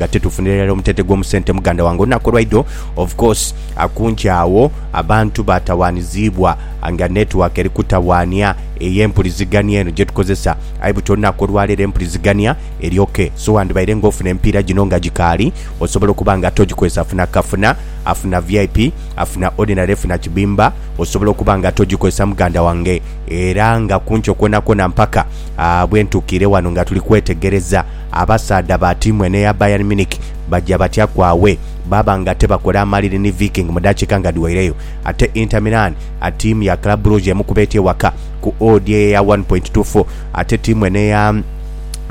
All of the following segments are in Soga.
nga tetufunira irala omutente gw'omusente muganda wange olunaku olwaidho of course akunki agho abantu batawanizibwa nga network eri kutawanya ey'empulizigania eno gyetukozesa aye buti olunaku olwaleero empulizigania eri ok so wandibaire nga ofuna emipiira gino nga gikaali osobola okuba nga ate ogikozesa funa kafuna afuna vip afuna ordinary funa kibimba osobola okuba nga ate ogikozesa muganda wange era nga kunkyo kwonakwona mpaka bwentukiire wano nga tuli kwetegereza Abasaadha ba tiimu eno eya Bayern Munich baja batya ku awe baaba nga tebakola amaliri ni Viking mu dakiika nga dhiweireyo ate Inter Milan a tiimu ya Club Brugge emukuba etya ewaka ku odd eye eya one point two four ate tiimu eno eya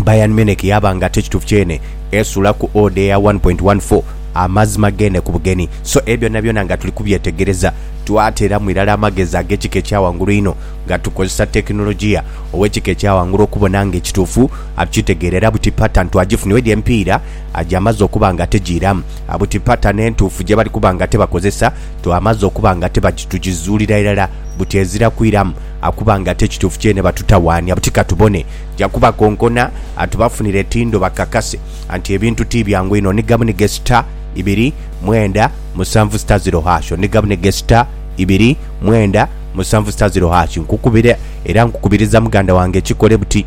Bayern Munich yaaba nga tekituufu kyene esuula ku odd eye eya one point one four. Amazima geene ku bugenyi. So ebyo byonabyona nga tuli kubyetegereza twateeramu irala amagezi ag'ekika ekya ghangulu einho nga tukozesa tekinologiya ow'ekika ekya ghangulu okubona nga ekituufu Akitegeera era buti pattern twagifuna wedi empiira gyamaze okuba nga tegiiramu, buti pattern entuufu gyebali kuba nga tebakozesa twamaze okuba nga tebagi tugizuulira irala buti ezira kwiramu kuba nga ate kituufu kyene batutawaanya buti katubone ja kubakonkona tubafunire tindo bakakase nti ebintu ti byangu inho ni gamu ni gesita ibiri mwenda musanvu sita ziro hash ni gamu ni gesita ibiri mwenda musanvu sita ziro hash nkukubira era nkukubiriza muganda wange kikole buti.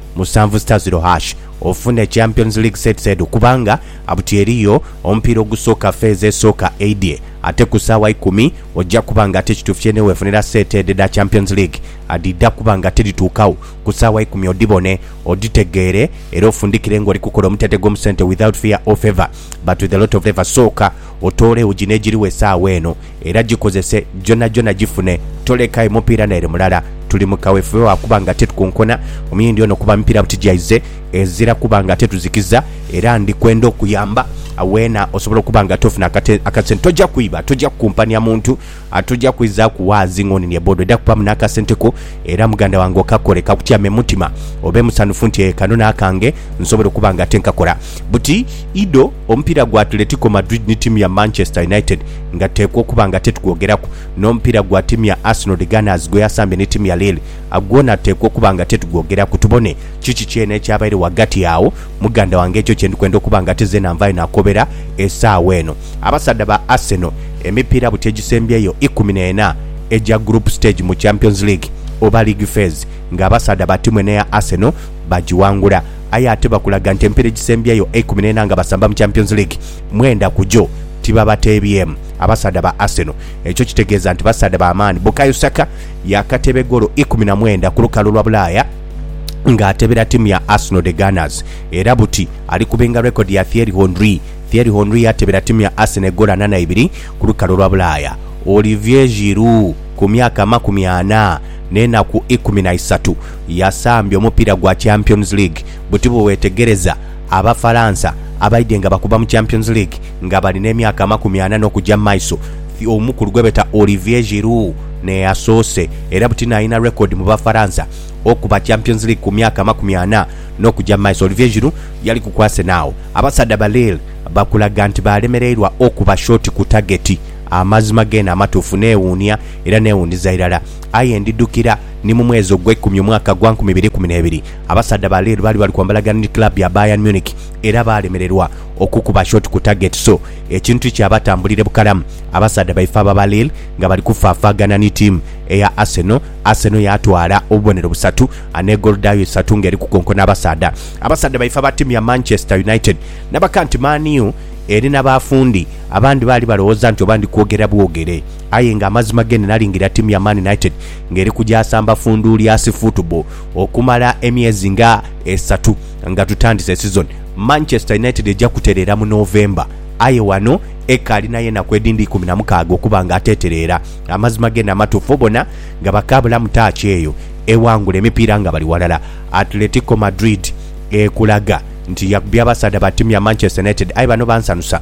Musanvu sita ziro hash ofune Champions League sets edho kubanga abuti eriyo omupiira ogusooka feezi esooka eidhye ate ku saawa ikumi oja kuba nga ate kitufye newefunira set edho edha Champions League adhidha kuba nga tedhituukagho ku saawa ikumi odhibone odhitegeere era ofundikire nga oli kukola omutete gwo mu sente without fear or favour but with a lot of favour sooka otoole ewuji negiriwo esaawa eno era gikozese gyonhagyonha gifune toleka aye mupiira naire mulala. Tuli mu kawefube wa kuba nga titukonkona omuyindi ono kuba mipiira buti gyaize ezira kuba nga tetuzikiza era ndi kwenda okuyamba weena osobole okuba nga tofuna akasente. Toja kwiba, toja kukumpania muntu, toja kwizaaku waazi ng'oninie boda oja kubamu n'akasente ko era muganda wange okakole kakutyame mu mutima obe musanhufu nti ee kano n'akange nsobola okuba nga ate nkakora. Buti Ido. Omupiira gwa Atletico Madrid ni tiimu ya Manchester United nga tuteekwa okuba nga tetugwogeraku, n'omupiira gwa tiimu ya Arsenal The Gunners gwe yasambye ni tiimu ya Lille gwona tuteekwa okuba nga tetugwogeraku tubone kiki kyene ekyabaire ghagati agho muganda wange ekyo kye ndi kwenda okuba nga ate zeena nvaayo nakobera esaawa eno. Abasaadha ba Arsenal emipiira buti egisembyeyo ikumi n'ena egya group stage mu Champions League oba League Phase nga abasaadha ba tiimu eno eya Arsenal bagiwangula. aye ate bakulaga nti empira egisembyeyo eikumi n'ena nga basamba mu Champions League, mwenda ku gyo tibabateebyemu. Abasaadha ba Arsenal ekyo kitegeeza nti basaadha ba maani. Bukayo Saka yaakateeba egoolo ikumi na mwenda ku lukalu lwa Bulaaya ng'ateebera tiimu ya Arsenal The Gunners era buti ali kubinga rekodi ya Thierry Henry. Thierry Henry yateebera tiimu ya Arsenal egoolo ana na ibiri ku lukalu lwa Bulaaya. Olivier Giroud ku myaka amakumi ana n'enaku ikumi na isatu. yasambye omupiira gwa Champions League buti bwewetegereza Abafaransa abaidye nga bakuba mu Champions League nga bali n'emyaka amakumi ana n'okuja mu maiso, omukulu gwebeeta Olivier Giroud n'eyasoose era buti n'alina record mu Bafaransa okuba Champions League ku myaka amakumi ana n'okuja mu maiso. Olivier Giroud yaliku ku Arsenal. Abasaadha ba Lille bakulaga nti baalemereirwa okuba short ku tageti. Amazima geene amatuufu neewuunia era neewuuniza irala. Aye ndidhukira ni mu mwezi ogw'eikumi omwaka gwa nkumi ibiri ikumi n'ebiri, abasaadha ba Lille baali bali kwambalagana ni club ya Bayern Munich era baalemererwa okukuba shot ku target so ekintu tikyabatambulire bukalamu. Abasaadha baife abo aba Lille nga bali kufaafaagana ni tiimu eya Arsenal, Arsenal yaatwala obubonero busatu n'e goolo dhaayo isatu ng'eri kukonkona abasaadha. Abasaadha baife aba tiimu ya Manchester United nabaka nti Man U eri na bafundi abandi baali balowooza nti oba ndi kwogera bwogere. Aye nga amazima gene nalingira ttiimu ya Man United nga eri kugyasamba funduulyasi football okumala emyezi nga esatu nga tutandise sizoni. Manchester United eja kutereera mu November aye wano ekaali nayo enaku edindi ikumi na mukaaga okuba nga atetereera. Amazima gene amatufu bona nga bakaabula mu taaki eyo ewangula emipiira nga bali walala. Atletico Madrid ekulaga nti yakubye abasaadha ba ttiimu ya Manchester United aye bano bansanusa.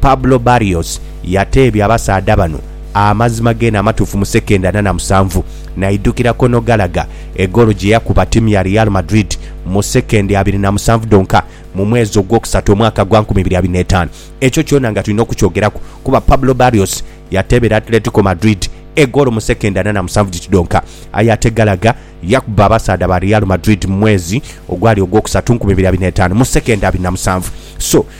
Pablo Barrios yateebya abasaadha bano amazima geene amatuufu mu sekendha ana na musanvu, naidhukira Conor Gallagher egoolo gye yakuba ttiimu ya Real Madrid mu sekendha abiri na musanvu dhonka mu mwezi ogwokusatu omwaka gwa nkumi ibiri abiri n'etaanu. Ekyo kyona nga tulina okukyogeraku kuba Pablo Barrios yateebera Atletico Madrid egoolo mu sekendha ana na musanvu dhiti dhonka aye ate Gallagher yakuba abasaadha ba Real Madrid mu mwezi ogwali ogwokusatu nkumi ibiri abiri n'etaanu mu sekendha abiri na musanvu. So,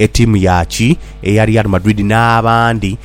Etiimu ya ki eya Real Madrid n'abandi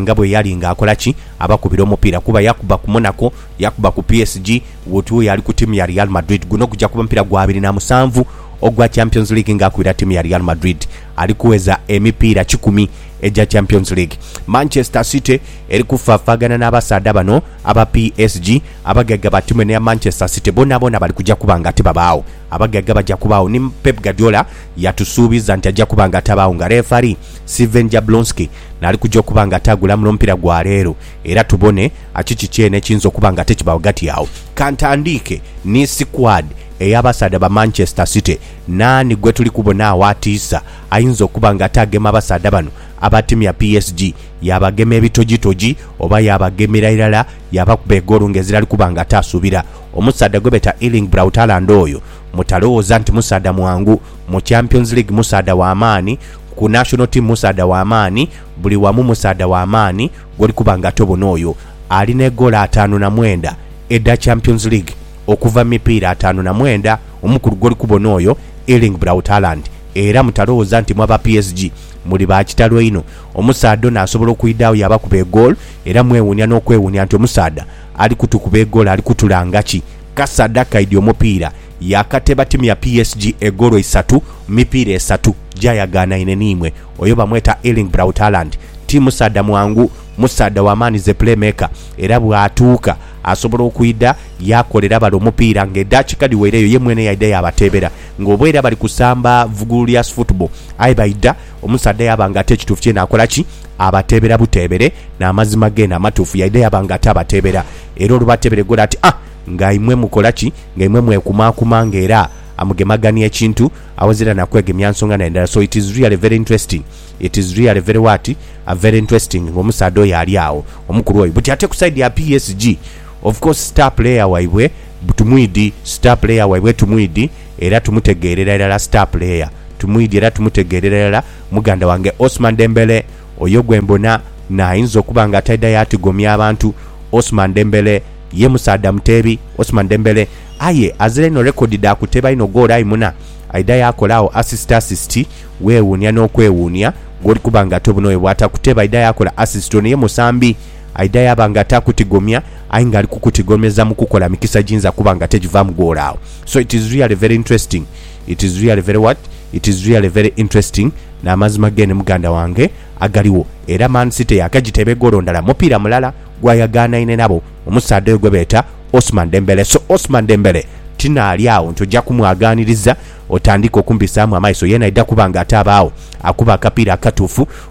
nga bwe yali ng'akola ki abakubira omupiira kuba yakuba ku Monaco, yakuba ku PSG bwoti oyo ali ku tiimu ya Real Madrid. Guno gugya kuba mupiira gwa abiri na musanvu ogwa Champions League ng'akubira tiimu ya Real Madrid. Ali kuweza emipiira kikumi egya Champions League. Manchester City eri kufafaagana n'abasaadha bano aba PSG. Abagaiga ba tiimu eno eya Manchester City boonaboona bali kugya kuba nga tibabaagho. Abagagga baja kubaagho ni Pep Guardiola yatusuubiza nti aja kuba nga atabaagho nga lefali, Sven Jablonski naali kuja okuba nga ataagula mu lw'omupiira gwa leero era tubone kiki kyene ekiyinza okuba nga ate kibaagho ghati agho. Ka ntandiike ni sikwadi ey'abasaadha ba Manchester City. Naani gwe tuli kubona agho atiisa ayinza okuba nga ataagema abasaadha bano abatimya PSG? Yaabagema ebitojitoji oba yaabagemera irala yaabakuba egoolo ng'ezirali kuba nga ataasuubira? Omusaadha gwebeeta Erling Braut Haaland oyo mutalowooza nti musaadha mwangu, mu Champions League musaadha wa maani, ku National Team musaadha wa maani, buli wamu musaadha wa maani gwoli kuba nga tobona oyo alina egoolo ataanu na mwenda edha Champions League okuva mu mipiira ataanu na mwenda omukulu gwoli kubona oyo Erling Braut Haaland era mutalowooza nti mu aba PSG muli ba kitalo einho. Omusaadha ono asobola okwidha agho yaabakuba egoolo era mwewuunia n'okwewuunia nti omusaadha Ali kutukuba egolo ali kutulanga ki? Kasad akaidhi omupiira yakate batimya PSG egolo isatu mu mipiira esatu gyayagaanaine n'imwe. Oyo bamweta Erling Braut Haaland. Ti musaadha mwangu, musaadha wa maani ze playmaker era bw'atuuka asobola okwidha yaakolera bale omupiira ng'edhaakika dhiweireyo ye mwene yaidha yaabateebera ng'oboera bali kusamba vugulu lya sfootball aye baidha Omusaadha yaaba nga ati ekituufu kyeene akola ki? Abateebera buteebere n'amazima geene amatuufu, yaidha yaaba nga ati abateebera. Era olubateebere ghola ati, A! Nga imwe mukola ki? Nga imwe mwekumaakuma nga era amugemagania ekintu awoze era na kwegemya nsonga na ndala. So it is really very interesting. It is really very what? A very interesting nga omusaadha oyo ali agho, omukulu oyo. Buti ate ku side ya PSG, of course star player waibwe tumwidhi, star player waibwe tumwidhi. era tumutegeerera irala star player tumwidhi era tumutegeerera irala muganda wange Ousman Dembele oyo gwe mbona na ayinza okuba nga ataidha yaatigomya abantu Ousman Dembele ye musaadha muteebi Ousman Dembele aye azira inho record dha kuteeba inho goolo aye muna aidha yaakola agho assist assist weewuunia n'okwewuunia gwoli kuba nga ate buno oyo bw'atakuteeba aidha yaakola assist ono ye musambi Aidha yaaba nga taakutigomya aye nga ali kukutigomeza mu kukola mikisa giinza kuba nga tegivaamu ghola agho. So it is really very interesting, it is really very what? It is really very interesting N'amazima geene muganda wange agaligho era Man City yaakagiteeba egoolo ndala mupiira mulala gwayagaanaine nabo omusaadha oyo gwebeeta Ousmane Dembele. So Ousmane Dembele tinaali agho nti oja kumwagaaniriza otandike okumbisaamu amaiso, yeena aidha kuba nga ataaba agho akuba akapiira akatuufu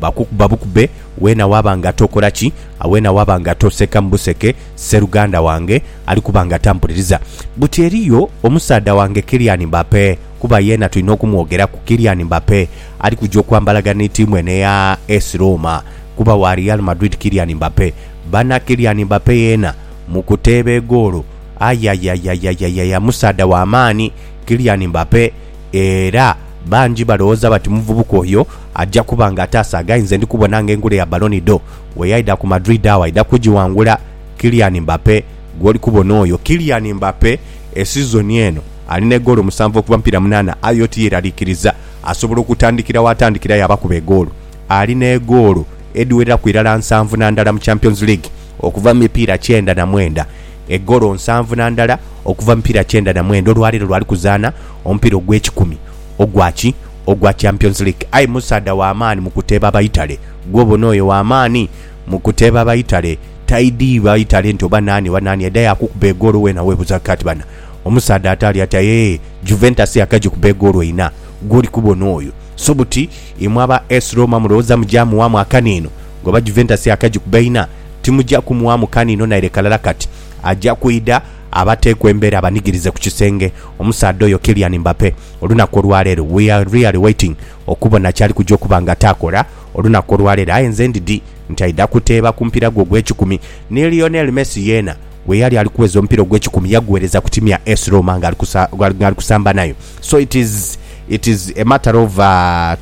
Bakukuba bukube weena waaba nga tokora ki, weena waaba nga toseka mu buseke, sseruganda wange ali kuba nga tampuliriza. Buti eriyo omusaadha wange Kylian Mbappe, kuba yeena tulina okumwogeraku, Kylian Mbappe ali kuja okwambalaga ni tiimu eno eya AS Roma, kuba wa Real Madrid Kylian Mbappe. Bana Kylian Mbappe yeena mu kuteeba egoolo, ayayayayayaya musaadha wa maani Kylian Mbappe. era bangi balowooza bati omuvubuka oyo aja kuba nga ataasa agai nze ndi kubona nga engule ya Ballon d'Or bweyaidha ku Madrid agho aidha kugiwangula Kylian Mbappe gwoli kubona oyo Kylian Mbappe esizoni eno ali n'egoolo musanvu okuva mu mipiira munaana aye oti yeeraliikiriza asobola okutandikira w'atandikira yaabakuba egoolo ali n'egoolo edhiwereraku irala nsanvu na ndala mu Champions League okuva mu mipiira kyenda na mwenda. egolo nsanvu na ndala okuva mu mipiira kyenda na mwenda, olwaleero lwali kuzaana omupiira ogw'ekikumi ogwa ki ogwa Champions League. Aye musaadha wa maani mu kuteeba Abaitale. Gwe obona oyo wa maani mu kuteeba Abaitale? Taidhi Baitale nti oba naani oba naani aidha yaakukuba egoolo weena weebuuza kati bana omusaadha ataali ati aye Juventus yakagikuba egoolo ina gw'oli kubona oyo? So buti imwe aba AS Roma mulowooza mugya muwaamu akaniino ng'oba Juventus yakagikuba ina? Timuja kumughamu kaniino naire kalala kati. Aja kwidha abateeku embera abanigirize ku kisenge, omusaadha oyo Kylian Mbappe, olunaku olwaleero. We are really waiting okubona kyali kuja okuba nga taakola olunaku olwaleero aye nze ndidhi nti aidha kuteeba ku mupiira gwe ogw'ekikumi. Ni Lionel Messi yeena weyali ali kuweza omupiira ogw'ekikumi yagugheereza ku tiimu ya AS Roma ng'ali kusamba nayo. So it is, it is a matter of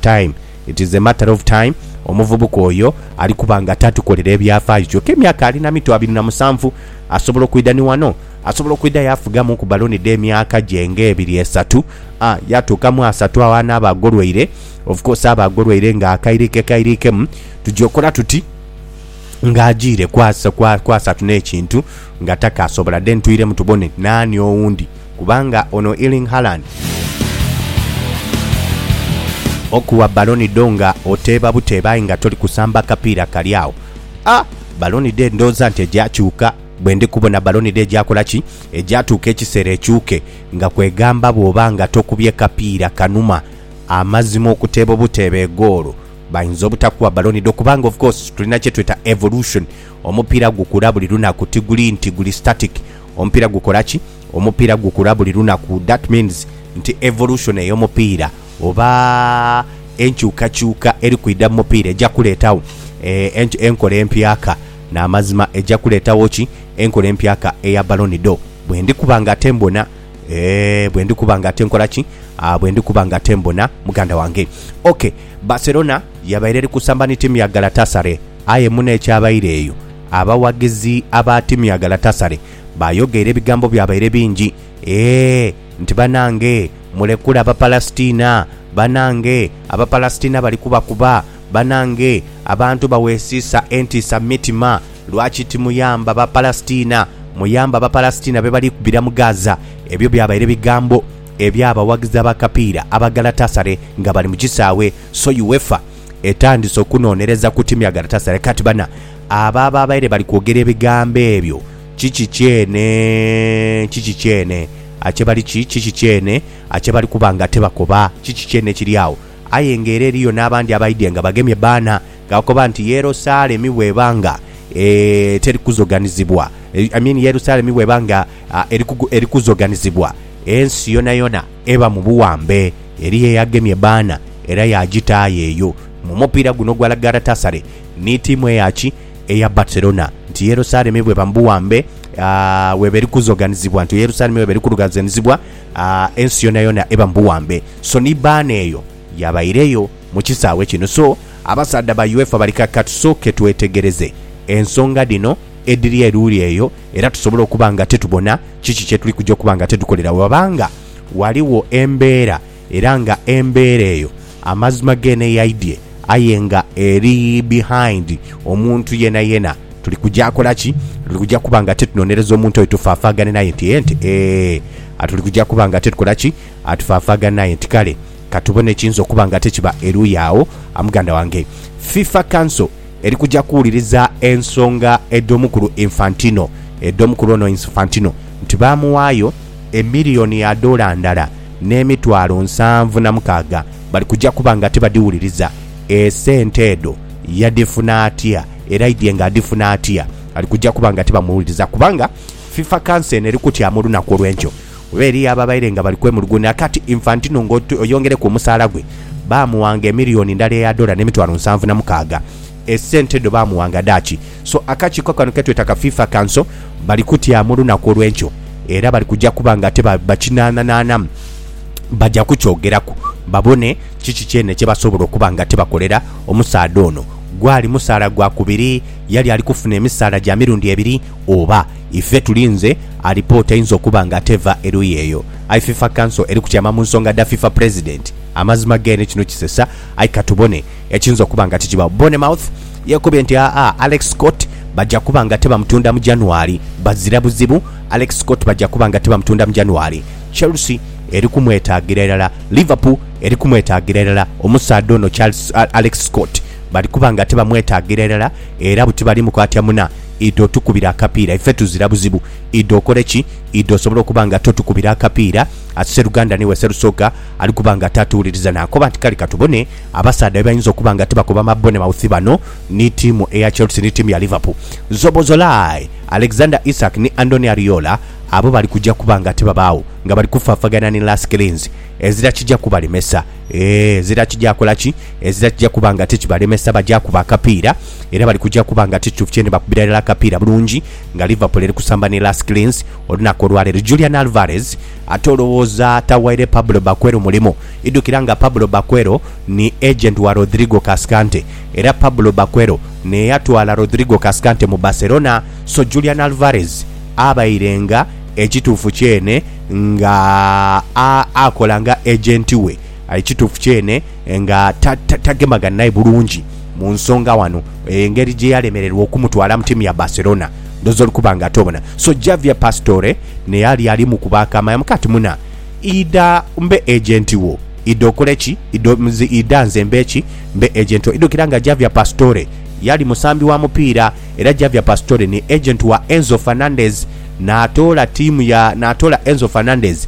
time It is a matter of time omuvubuka oyo ali kuba nga tatukolera ebyafaayo kyoka emyaka ali na mito abiri na musanvu. Asobola okwidha ni wano. Asobola okwidha yafugamu ku baloni dhe myaka gye nga ebiri esatu, a yatuuka mu asatu agho anaaba agolweire. Of course aba agolweire nga akairikekairikemu. Tugya okola tuti nga ajiire ku asatu n'ekintu nga takaasobola? Then twiremu tubone naani owundi. Kubanga ono Erling Haaland okuwa Ballon d'Or nga oteeba buteeba aye nga toli kusamba kapiira kali agho. A Ballon d'Or ndhooza nti egya kyuka bwe ndi kubona Ballon d'Or egya kola ki? Egya tuuka ekiseera ekyuke nga kwegamba bw'oba nga tokubye kapiira kanuma amazima okuteeba obuteeba egoolo bayinza obutakuwa Ballon d'Or kubanga of course tulina kye tweta evolution, omupiira gukula buli lunaku tiguli nti guli static. Omupiira gukola ki? Omupiira gukula buli lunaku that means nti evolution eyomupiira oba enkyukakyuka eri kwidha mu mupiira eja kuleetagho enkola empyaka namazima eja kuleetagho ki? Enkola empyaka eya Ballon d'Or bwendi kuba nga ate mbona eeh bwendi kuba nga ate nkola ki? Bwendi kuba nga ate mbona muganda wange ok. Barcelona yabaire eri kusamba ni tiimu ya Galatasaray aye muno ekyabaire eyo, abawaghizi aba tiimu ya Galatasaray bayogeire ebigambo byabaire bingi ee nti banange mulekule Abapalasitina, banange Abapalasitina bali kubakuba, banange abantu baweesiisa entiisa mu mitima lwaki timuyamba Bapalasitina, muyambe Abapalasitina be bali kubira mu Gaza, ebyo byabaire bigambo. Eby'abawagizi ab'akapiira aba Galatasaray nga bali mu kisaawe so UEFA etandise okunonereza ku tiimu ya Galatasaray kati bana abo ababaire bali kwogera ebigambo ebyo kiki kyene kiki kyene akyebali ki kiki kyene akyebali kuba nga tebakoba kiki kyene ekiri agho aye nga era eriyo n'abandi abaidye nga bagemye baana gakoba nti Yerosalemi bweba nga e teri kuzoganizibwa I mean Yerusalemi bweba nga Erikuzoganizibwa ensi yonayona eba mu buwambe. Eriyo eyagemye baana era yaagitaagho eyo. Mu mupiira guno ogwa La Galatasare ni tiimu eya ki? Eya Barcelona. Nti Yerusalemi bweba mu buwambe, weba eri kuzoganizibwa. Nti Yerusalemi weba eri kurugazenizibwa, ensi yonayona eba mu buwambe. So ni baana eyo yabaireyo mu kisaawe kino. So abasaadha ba UEFA bali kati, ka tusooke twetegereze ensonga dhino. edhiri eruuli eyo era tusobola okuba nga titubona kiki kye tuli kuja okuba nga titukolera bwebaba nga ghaligho embeera era nga embeera eyo amazima geene eyaidhie aye nga eri behind omuntu yenayena. Tuli kuja kola ki? Tuli kuja kuba nga titunonereza omuntu oyo tufaafaaghane naye nti eeh nti eeh. Tuli kuja kuba nga titukola ki? Tufaafaaghane naye nti kale katubone ekiyinza okuba nga tikiba eruuyi agho. Muganda wange, FIFA Council. Eri kuja kuwuliriza ensonga edh'omukulu Infantino edh'omukulu ono Infantino nti baamuwaayo emiliyoni ya doola ndala n'emitwalo nsanvu na mukaaga bali kuja kuba nga tibadhiwuliriza. Esente edho yadhifuna atya era aidhie nga adhifuna atya ali kuja kuba nga tibamuwuliriza kubanga FIFA kanso eno eri kutyamu olunaku olw'enkyo Oba eriyo ababaire nga bali kwemuluguunira kati Infantino nga oyongereku omusaala gwe, baamuwanga emiliyoni ndala eya dola n'emitwalo nsanvu na mukaaga. Esente edho baamuwanga dha ki? So akakiiko kano ke tweta ka FIFA Council bali kutyaama olunaku olw'enkyo era bali kuja kuba nga ate bakinaananaanamu. Baja kukyogeraku babone kiki kyene kye basobola okuba nga ate bakolera omusaadha ono. Gwali musaala gwa kubiri? Yali ali kufuna emisaala gya mirundi ebiri oba? Ife tulinze alipoota einza okuba nga teva eruyi eyo. Aye fifa council eri kutyama mu nsonga dha fifa president. Amazima geene kino kisesa aye katubone ekiyinza okuba nga tikibagho. Bournemouth yekobye nti aa Alex Scott baja kuba nga tebamutunda mu January. Bazira buzibu Alex Scott baja kuba nga tebamutunda mu January. Chelsea eri kumwetagira irala. Liverpool eri kumwetagira irala. Omusaadha ono Charles Alex Scott bali kuba nga tebamwetagira irala era buti bali mu kwatya muna. Idho otukubire akapiira ife tuzira buzibu. Idho okole ki? Idho osobole okuba nga totukubira akapiira at sseruganda ni we sserusoga ali kuba nga taatuwuliriza naakoba nti kale katubone abasaadha bye bayinza okuba nga tibakoba ma Bournemouth bano ni ttiimu eya Chelsea ni ttiimu ya Liverpool. Szoboszlai, Alexander Isak ni Andoni Ariola abo bali kuja kuba nga tibabaagho nga bali kufaafagana ni Lars Klins. Ezira kija kubalemesa. Eeh, ezira kija kola ki? Ezira kija kuba nga tikibalemesa baja kuba akapiira. era bali kuja kuba nga ti kituufu kyene bakubira irala akapiira bulungi nga Liverpool eri kusamba ni Las Clins olunaku olwaleero. Julian Alvarez ate olowooza tawaire Pablo Baquero mulimu? Idhukira nga Pablo Baquero ni agent wa Rodrigo Cascante era Pablo Baquero n'eyatwala Rodrigo Cascante mu Barcelona so Julian Alvarez abaire nga ekituufu kyene nga akola nga agent we. Ekituufu kyene nga tagemagana naye bulungi mu nsonga wano, engeri gye yalemererwa okumutwala mu tiimu ya Barcelona ndhooza oli kuba nga tobona. So Javier Pastore naye ali ali mu kubaakaama yamuka ati, Muna, idha mbe ejenti wo. Idha okole ki? Idha nze mbe ki? Mbe ejenti wo. Idhukira nga Javier Pastore yali musambi wa mupiira era Javier Pastore ni ejenti wa Enzo Fernandez, naatoola tiimu ya, naatoola Enzo Fernandez